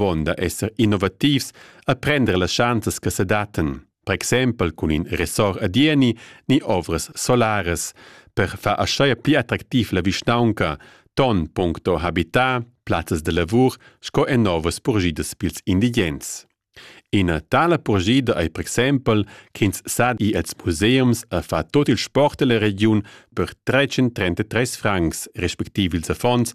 pon da esser innovativs a prender las schanzas che se daten, per exempel cun in ressort a Dieni ni ovras solaras, per far aschaia pli attractiv la vischnaunca, ton puncto habitat, plazzas de lavur sco en novas purgidas pils indigens. Ina tala purgida ei per exempel ch'ins sa ir als museums a far tot il sport della regiun per 333 francs, respektiv ils affons,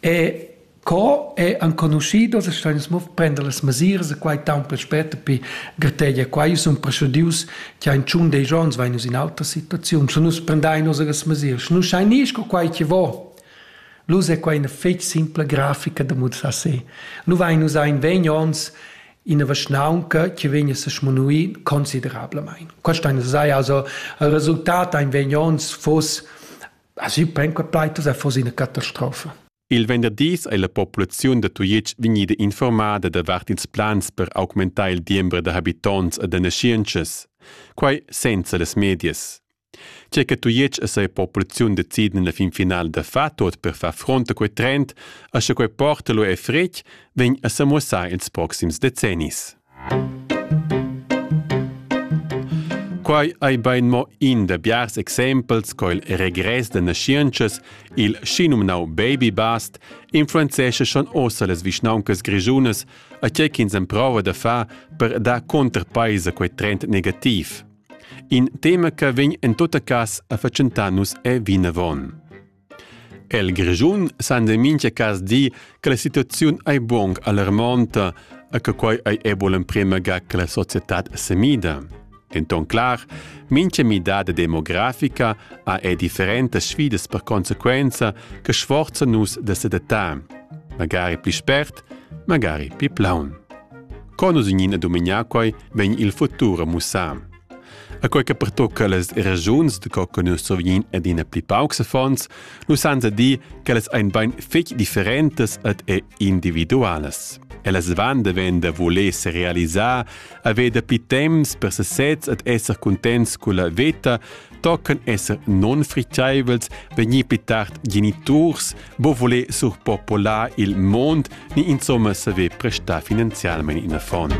E co è enconuschido se steins mo prender las mesiras e quai taunt pel spet pi grategia qua io sun preschudius cha in tschun dei giorns vain nus in autra situaziun sche nus prendain osa las mesiras sche nus schain gnir sco quai chi vo L'usa è quai ina fetg simpla grafica da mussar se. Nu vain usà in vegn ons ina vaschnaunca che vegn a se smunuir considerablamaing. Questa ina sai, also il resultat ein vegn ons fuss As ü pen co taitas ha fos üna catastrofa. Il venderdis ei la populaziun da Tujetsch vegnida informada davart ils plans per augmentar il diember da habitonts e da naschientschas, quai senza las medias. Tge che Tujetsch e seia populaziun deciden la fin finale da far tot per far front a quei trend, a sche quei porta lu e fretg, vegn a semuossar ils proxims decennis. Quai ei bein mo in da biars exempels co il regress da naschientschas, il schinumnau baby bust, influenzescha schon ossa las vischnauncas grischunas, a tgei ch'ins emprova da far per dar contrapeis a quei trend negativ. In tema che vegn en tutta cas a fatschentar nus è vinavon. El Grischun san de mincha cas dir che la situaziun ei buong alarmonta e che quei ei ebo l'emprema ga che la societad semida. En ton clar, mincha midada demografica ha e differentas sfidas per conseguenza che sforza nus da sedatar, magari pli spert, magari pli plaun. Con nus in ina domenica quei vegn il futur a mussar. A quei che pertocca las regiuns de co che nus survegin adina pli paucs affons, nus sanza dir che las ein bein fetg differentas ed individualas. Ellas van de ven da voler se realisar, haver da pli temps per sesez ed esser contents con la veta, tocken esser non friceivels, vegnir pli tard geniturs, bo voler surpopolar il mond ni insomma saver prestar finanzialmente in affon.